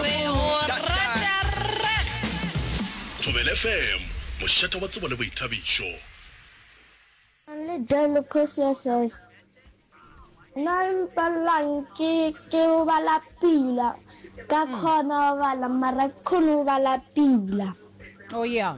re go rata rrag. Thobela FM, mošata wa tsebo le boithabišo. Only Joel Kosiases. Na mpallang ke ke o bala pila ka khona o bala mara khone o bala pila. Oh yeah.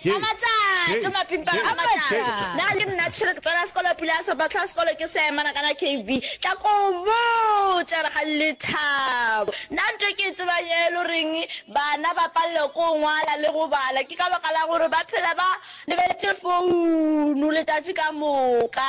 A matšatši mapimpana a matšatši na le nna tšhwere ke tsena sekolo pula ya seropa tlhoa sekolo ke se mana kana KV tla ko botša re ga lethabo na nto ke tseba ye lo reng bana ba palelwa ko ngwala le go bala ke ka baka la gore ba phela ba lebeletše founu letšatši ka moka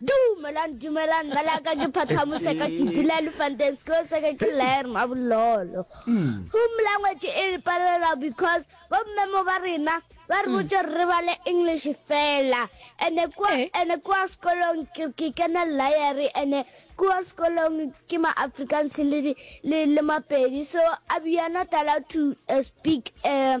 Dumelang, dumelang, mme la ka ke Phathamose ka ke dula Elephanteng, sekolo sa ka ke Lair Mabololo. Home language e re palela because bommemo ba rena ba re botse re bale English fela. Ene kwa Eh. ene kwa sekolong ke ke kena Lair ene kwa sekolong ke ma Afrikaans le di- le le Mapedi so I we are not allowed to uh, speak uh,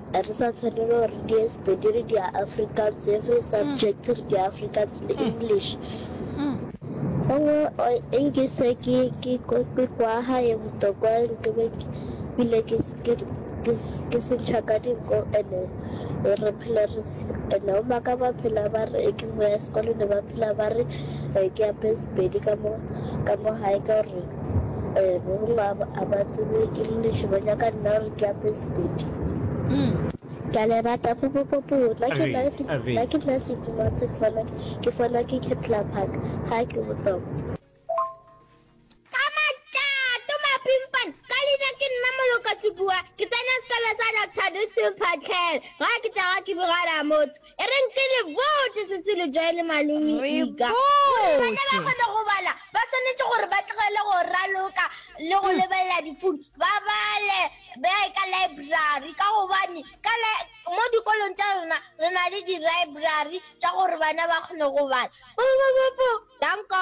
A re sa tshwanelo gore re die Sepedi re dia Afrikaans, every subject re dia Afrikaans le English. Gongwe o e nkise ke ke ko- ke kwa gae botokwa ke be ke bile ke s- ke ke s- ke sentšha ka dinko ene re phele re s- ene o maka ba phela ba re e ke boya sekolone ba phela ba re eh, ke ape Sepedi ka mo ka mo gae ka gore a ba tsebe english ba nyaka nna re tlape sepedi ke a le rata popopopo nna ke nna ke nna ke nna setuma tse fana ke fana ke ketla park ha ke botoko Dr. Dixon Patel, ga ke tla ga ke bogara motho. e reng ke le botse setsilo jwa ele malome ika gore bana ba kgone go bala ba tshwanetse gore ba tlogele go raloka le go hmm. lebelela difounu ba bale ba ye ka library ka gobane ka mo dikolong tsa rona re na le di-library tsa gore bana ba kgone go bala bobobobo danko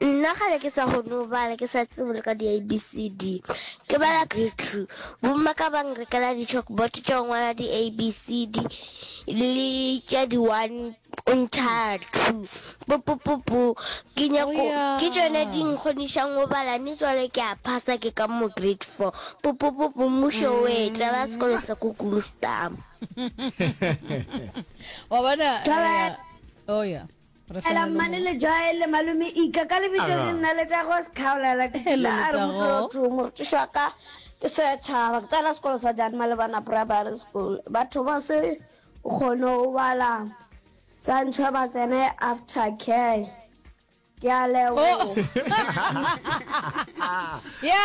Nna kgale ke sa kgone go bala ke sa tsebe le ka di-abcd ke bala grade two bomma ka bang rekela di-chalkbot tša go ngwala di-abcd le tša di-one ntšha two popopopo ke nyako ke tšone di nkgonišang go bala ne tswale ke a phasa ke ka mo grade four popopopo mmušo o e tlala sekolo sa ko kulustama wa bona eh, oh yeah Hela mmane le joy le malome ika ka lebitso le nna le tla go sekhaola la la a re motlo tšhomo re tšwa ka ke se tšhaba ke tsena sekolo sa jane malebana primary school batho ba se kgone go bala sa ntšhwa ba tsene after care ke a leboga